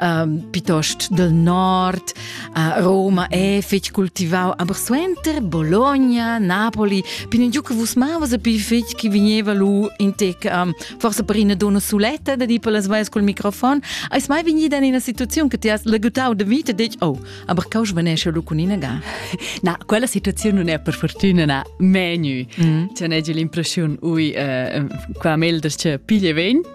um, piuttost del nord, uh, Roma è fetg cultivau, aber suenter Bologna, Napoli, pin giù che vus mavas a pi fetg che veniva lu in tec um, forse per una donna suletta da di per las vaias col microfon, eis mai vegnida in una situazione che ti has legutau de vita e detg, oh, aber cau svanesce lu con ina ga. Na, quella situazione non è per fortuna na menu. Mm. C'è negli l'impressione, ui, uh, qua Melders c'è piglie vegn,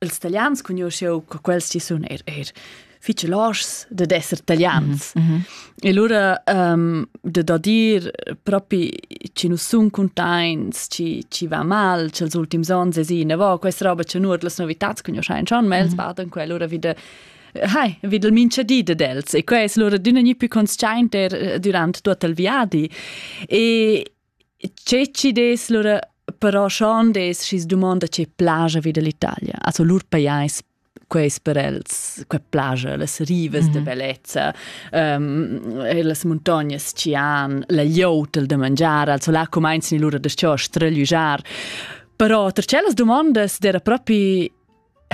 ils italians cugnuoschieu co quels chi sun eir eir fich loschs dad esser italians. Mm -hmm. E lura um, de da dir propi chi nu sun cuntaints, chi, chi va mal, ch'els ultims ons esina vo, questa roba cha nuot las novitats cugnuoschain schon, ma els mm -hmm. badan quella lura vida Hai, vid il minchadi de dels e quai es lura d'üna gni più consciaint er eh, durant tuot il viadi. E Che chi dess lura però schon dess schi's dumanda che plaja vi da l'Italia. Also lur pajais quais per els que plaja, las rivas mm -hmm. da bellezza, um, las muntognas chi han, la glieud da mangiar, also là cumainzan lura da sto strelüjar. Però ter tschellas dumondas d'era propi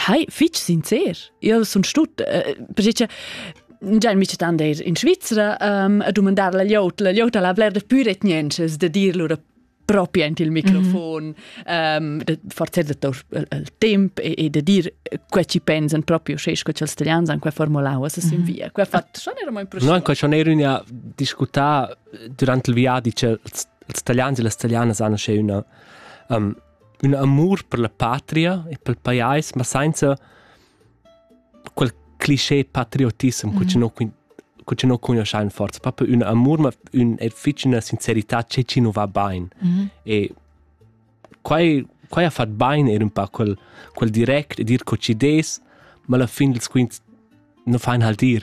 Hai, fitg sincer. Io sun stut, eh, perché Già mi tan dir in Svizzera um, a domandar la liot, la liot la bler de pure niences de dir lura proprio int il microfon, mm -hmm. um, forza de tor il temp e, e de dir quel ci pensan proprio sche che els italians han quel formulau a sin mhm. via. Quel fatto schon era mai impressionante. No, quel schon era una discuta durante il viaggio, cioè els italians e le italiane sanno c'è una um, Ün amur per la patria e pel pajais, ma sainza quel clisché patriotissem cu chi no cu chi no cugnuoschain forza. Propi ün amur, ma ün e fich üna sincerità che chi nu va bain. E quai quai ha fat bain eir ün pa quel quel direct e dir co chi dess, ma alla fin ils quints nu fain halt ir.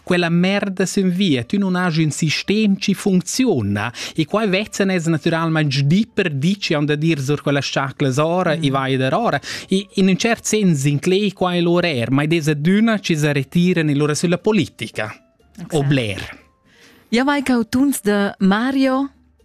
quella merda sen via, tu non has un sistem ci funziona e qua vezzen es naturalmente di per di ci han da dir sur quella sciaclas ora mm. e vai der ora e in un cert sens in clay qua è l'orer, ma ed aduna ci se retiran e loro sulla politica. Okay. O Blair. Ja vai cau tuns de Mario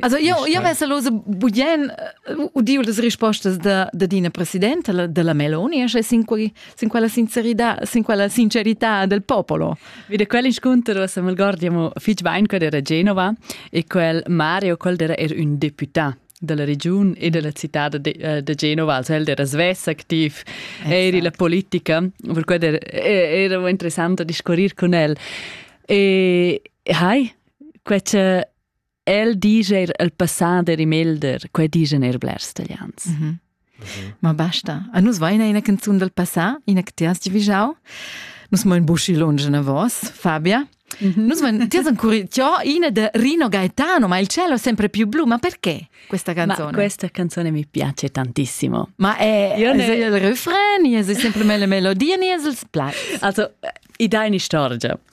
Also io io vesa lose bugen udiu las rispostas da da dina presidenta della Meloni e sin quei sin quella sincerità sin quella sincerità del popolo. Vide quel inscontro se me guardiamo fich bain quel era Genova e quel Mario quel era er un deputà della region e della città de, eh, de Genova, also el era svess activ, eri la politica, per quello era, era interessante discorrere con el. E hai, quei che el dice er el passà der im Elder, quei digen er blers italians. Mm -hmm. Ma basta. A nus vaina ina canzun del passà, ina che ti has divigiau. Nus mo in buschi longe na vos, Fabia. Mm -hmm. Nus van, ti has ancora io ina de Rino Gaetano, ma il cielo è sempre più blu, ma perché questa canzone? Ma questa canzone mi piace tantissimo. Ma è io ne... il refrain, è sempre le melodie, ne è il play. Also, i dai ni storgia.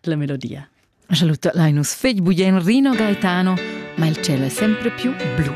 la melodia. Saluto lai nus fegl bugen Rino Gaetano, ma il cielo è sempre più blu.